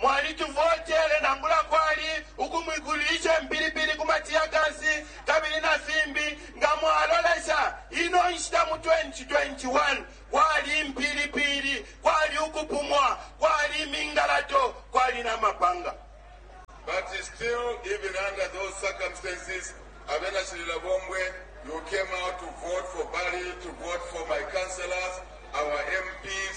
Mwalituvotele nangula kwali ukumwikulishe mpilipili ku matiyakasi kabili na fimbi. Nga mwalolesha ino nshita mu 2021, kwali impilipili, kwali ukupumwa, kwali imingalato, kwali na mapanga. But still, even under those circumstances, abena Chililabombwe, you came out to vote for Bally, to vote for my councillors, our MPs,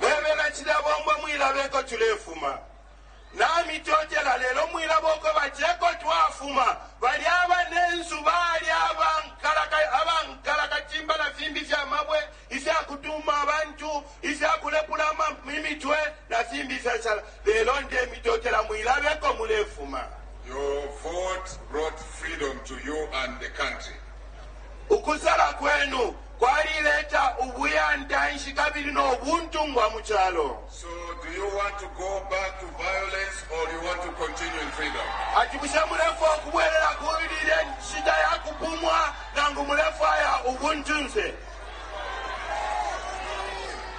Webena cilya bombo mwilabe eko tulefuma. Namitotela, lelo mwilaba uko bati eko twafuma. Bali abanensu bali abankalaka, abankalakatimba na fimbi fya mabwe, ifya kutuma abantu, ifya kulepula imitwe na fimbi ifyashala. Lelo ndemitotela, mwilabe eko mulefuma. Your vote brought freedom to you and the country. Ukusala kwenu kwalileta ubuyantanshi kabili no buntungwa mu calo. So do you want to go back to violence or do you want to continue in freedom? Ati bushe mulefwa ukubwelela kuli ilya nshita ya kupumwa nangu mulefwaya ubuntunse?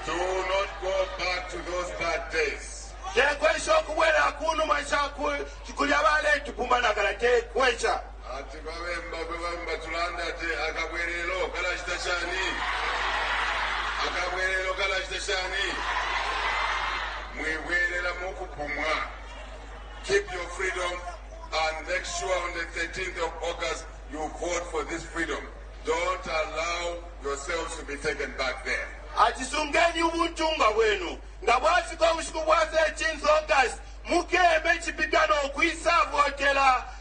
Do not go back to those bad days. Tekwesha ukubwelela ku numa sha ku- kulya baletupuma na kala tekwesha. Ati kwa bemba kwe bamba tulanda ati akabwelelo kalachita shani? Akabwelelo kalachita shani? Mwibwelela mukupumwa. Keep your freedom and make sure on the 13th of August you vote for this freedom. Don't allow yourselves to be taken back there. Ati sungeni ubuntungwa bwenu nga bwafika ubushiku bwa 13th August mukeme chipitano kwisa votela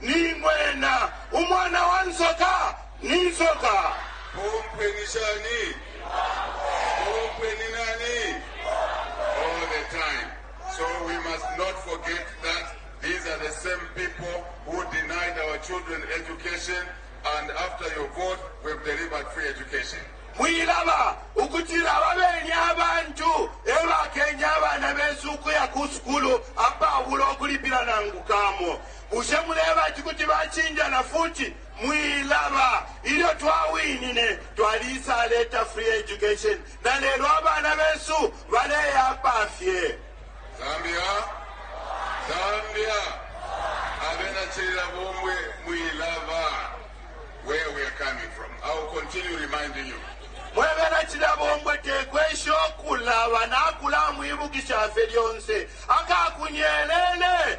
Ni ng'wena, umwana wa nsoka, ni nsoka. Pompwe ni shani? Pompwe ni nani? All the time. So we must not forget that these are the same people who denied our children education and after your vote we've delivered free education. mwilaba ukutila ababenye abantu ebakenye abana besu ukuya ku sukulu apabula ukulipila nangu kamo Bushe muleba ati kuti bacinja na futi? Mwilaba. Ilyo twawinine, twalisaleta free education na lelo abana besu baleya apa fye. Zambia, Zambia, abena Chilila Bongwe, mwilaba. Where we are coming from. I will continue reminding you. Mwebena chilabongwe tekwesha okulaba nakulamwibukisha fye lyonse akakunyelele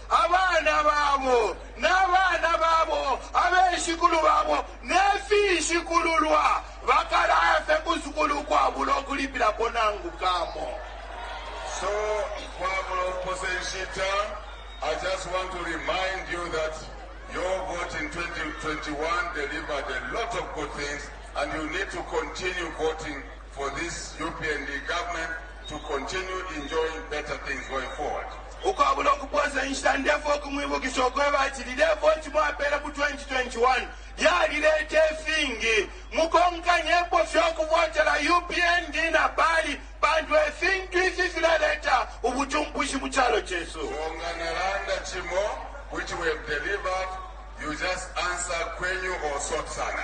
abana babo, na bana babo, abeshikulu babo, ne finshikululwa bakalaya fye ku sukulu ukwabula ukulipilapo nangu kamo. So, ukwabula ukupose nshita, I just want to remind you that your vote in 2021 delivered a lot of good things and you need to continue voting for this UPND government to continue enjoying better things going forward. Ukwabula ukupoosa inshita ndefwaya ukumwibukisha ukweba ati lilye voti mwapeele mu 2021 lyalileeta ifingi. Mukonkanyepo fye ukuvotela UPND na Bali pantu e fintu ifi filaleeta ubucumpushi mu calo cesu. So nga nalanda cimo which we have delivered, you just answer kwenyu or sort sana.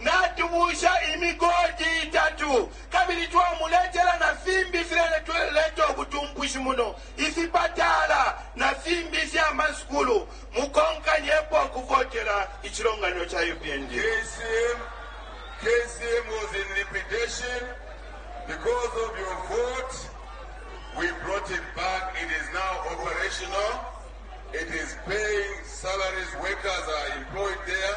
Natubuusha imigodi itatu kabili twamuletela na fimbi ifileleta ubutumpushi muno, ifipatala na fimbi ifya masukulu. Mukonkanyepo ukuvotela icilonganino ca UPND. KCM, KCM was in liquidation. Because of your vote, we brought it back. It is now operational. It is paying salaries. Workers are employed there.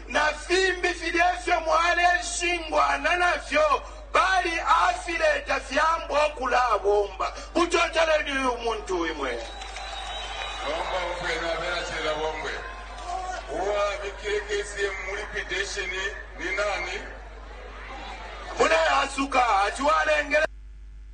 na fimbi filya ifyo mwaleshingwana nafyo bali afileta fyambwa ukulabomba. Mutoteleni uyu muntu imwe. Nomba umfweni abena cela bombwe. Uwabikile KCM mu liquidation ni nani? Mune asuka ati walengele.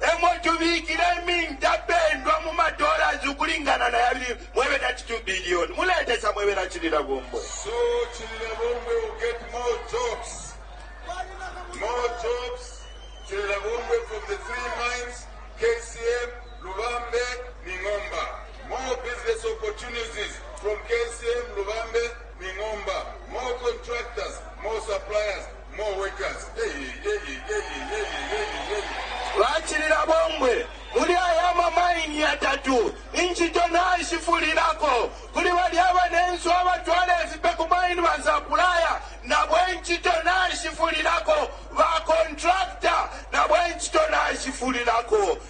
E mo tubikile imintapendwa mu ma dollars ukulingana na yabili mwe bena ci 2 billion. Muletesa mwe bena cilila bombwe. So cilila bombwe will get more jobs. More jobs. Cilila bombwe from the three mines, KCM, Lubambe, Ningomba. More business opportunities from KCM, Lubambe, Ningomba. More contractors, more suppliers. Bacilila bombwe muli aya ama maini yatatu. Incito naishifulilako kuli balya banensu abatwala ifipe ku maini, basapulaya na bo incito naishifulilako, bakontracta na bo incito naishifulilako.